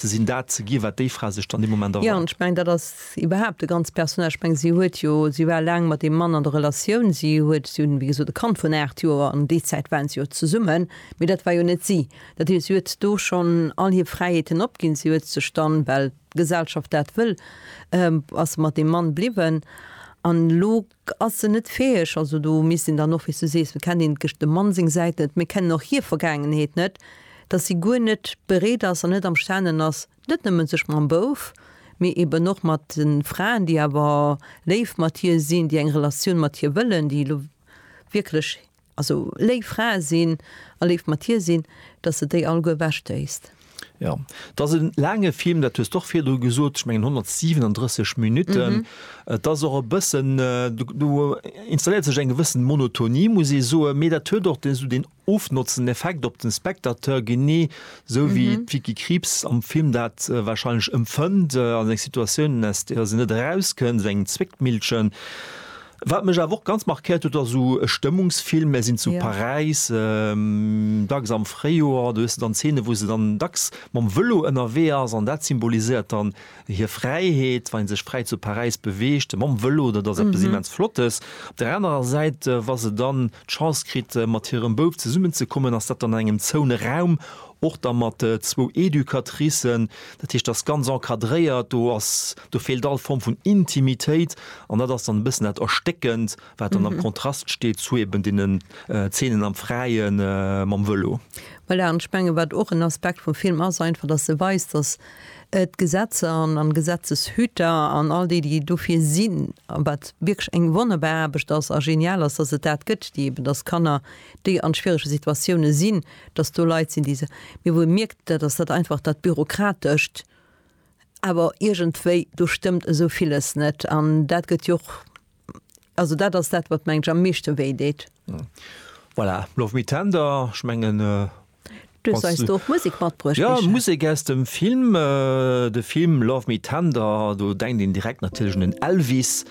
ze sinn, dat ze ginn, wat déi Fra sech dann dee Moment erhofft. Jo, an ech mengen, dat ass iwwerhaapt de ganze Personnage. Ech mengen, si huet jo, si war laang mat deem Mann an der Relatioun, si huet, si hunn, wéi gesot, e Kand vun aacht Joer, an déi Zäit waren si jo zesummen, mee dat war jo net si. Dat heescht, si huet do schonn all hir Fräiheeten opginn, si huet sech dann, well d'Gesellschaft dat wëll, ass se mat deem Mann bliwwen an elo, K, Ass se net fäheg, also do misst een dann och, wéi s du sees, et kennt een d'Gesch dem Mann seng Säit net, mir kennen och hir Vergaangenheet net, dass si guer net bereet ass an net amstanen ass, net nëmme sech mam Bouf, mee eben och mat de Fraen, déi awer léif mat hir sinn, déi eng Relatioun mat hir wëllen, déi elo wierklech Also léif Frae sinn a léif mat hir sinn, dass de déi alleguer ewechtéisst. Jo, et ass e laange Film, dat hues de och virdru gesot. Ech mengen 137 Minutten. Et ass och e bëssen, do installéiert sech eng gewëssen Monotonie, muss ee soen. Mee dat huet och dee sou deen ofnotzenden Effekt op de Spectateur, genee esou wéi d'Vicky Krieps am Film dat warscheinlech empfënnt, an eng Situatiounen, aus där se net erauskënnt, esou engem Zwéckmillchen. Wat mech awer och ganz markéiert huet, ass esou e Stëmmungsfilm. Mär sinn zu Paräis, dacks am Fréijoer. Do hues de dann Zeene wou se dann dacks mam Vëlo ënnerwee ass an dat symboliséiert dann hir Fräiheet, wa ee sech fräi zu Paräis beweegt mam Vëlo. Dat ass eppes immens Flottes. Op der anerer Säit, wa se dann d'Chance kritt mat hirem Bouf zesummen ze kommen, ass dat dann an engem zoune Raum, och da mat zwou Educatricen. Dat heescht, dat ass ganz encadréiert. Do ass Do feelt all Form vun Intimitéit an dat ass dann e bëssen dat Erstéckend, wat dann am Kontrast steet zu eben deenen Zeenen am Fräien mam Vëlo. Voilà, an ech menge wat och en Aspekt vum Film ass, einfach datt e weist, datt d'Gesetzer an Gesetzeshüter an all déi, déi dofir sinn, wat wierklech eng wonnerbar Aarbecht ass a genial ass, datt et dat gëtt, déi eben, datt Kanner, déi a schwierege Situatioune sinn, datt do Leit sinn, déi se, mee wou ee mierkt, dat ass dat einfach dat Bürokratescht, Awer iergendwéi, do stëmmt esou villes net. An dat gëtt jo och, also dat ass dat, wat, meng ech, am meeschte wéi deet. Voilà, love me tender, ech mengen. Du hues eis do och Musek matbruecht. Jo, Musek aus dem Film. De Film Love me tender, do denkt een direkt natierlech un den Elvis.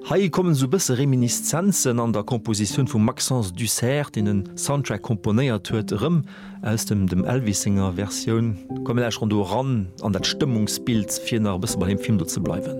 Hei kommen esou bësse Reminiszenzen an der Kompositioun vum Maxence Dussert, deen den Soundtrack komponéiert huet, erëm, aus dem dem Elvis senger Versioun. Komm mir lauscheren do eran an dat Stëmmungsbild, fir nach e bësse bei deem Film do ze bleiwen.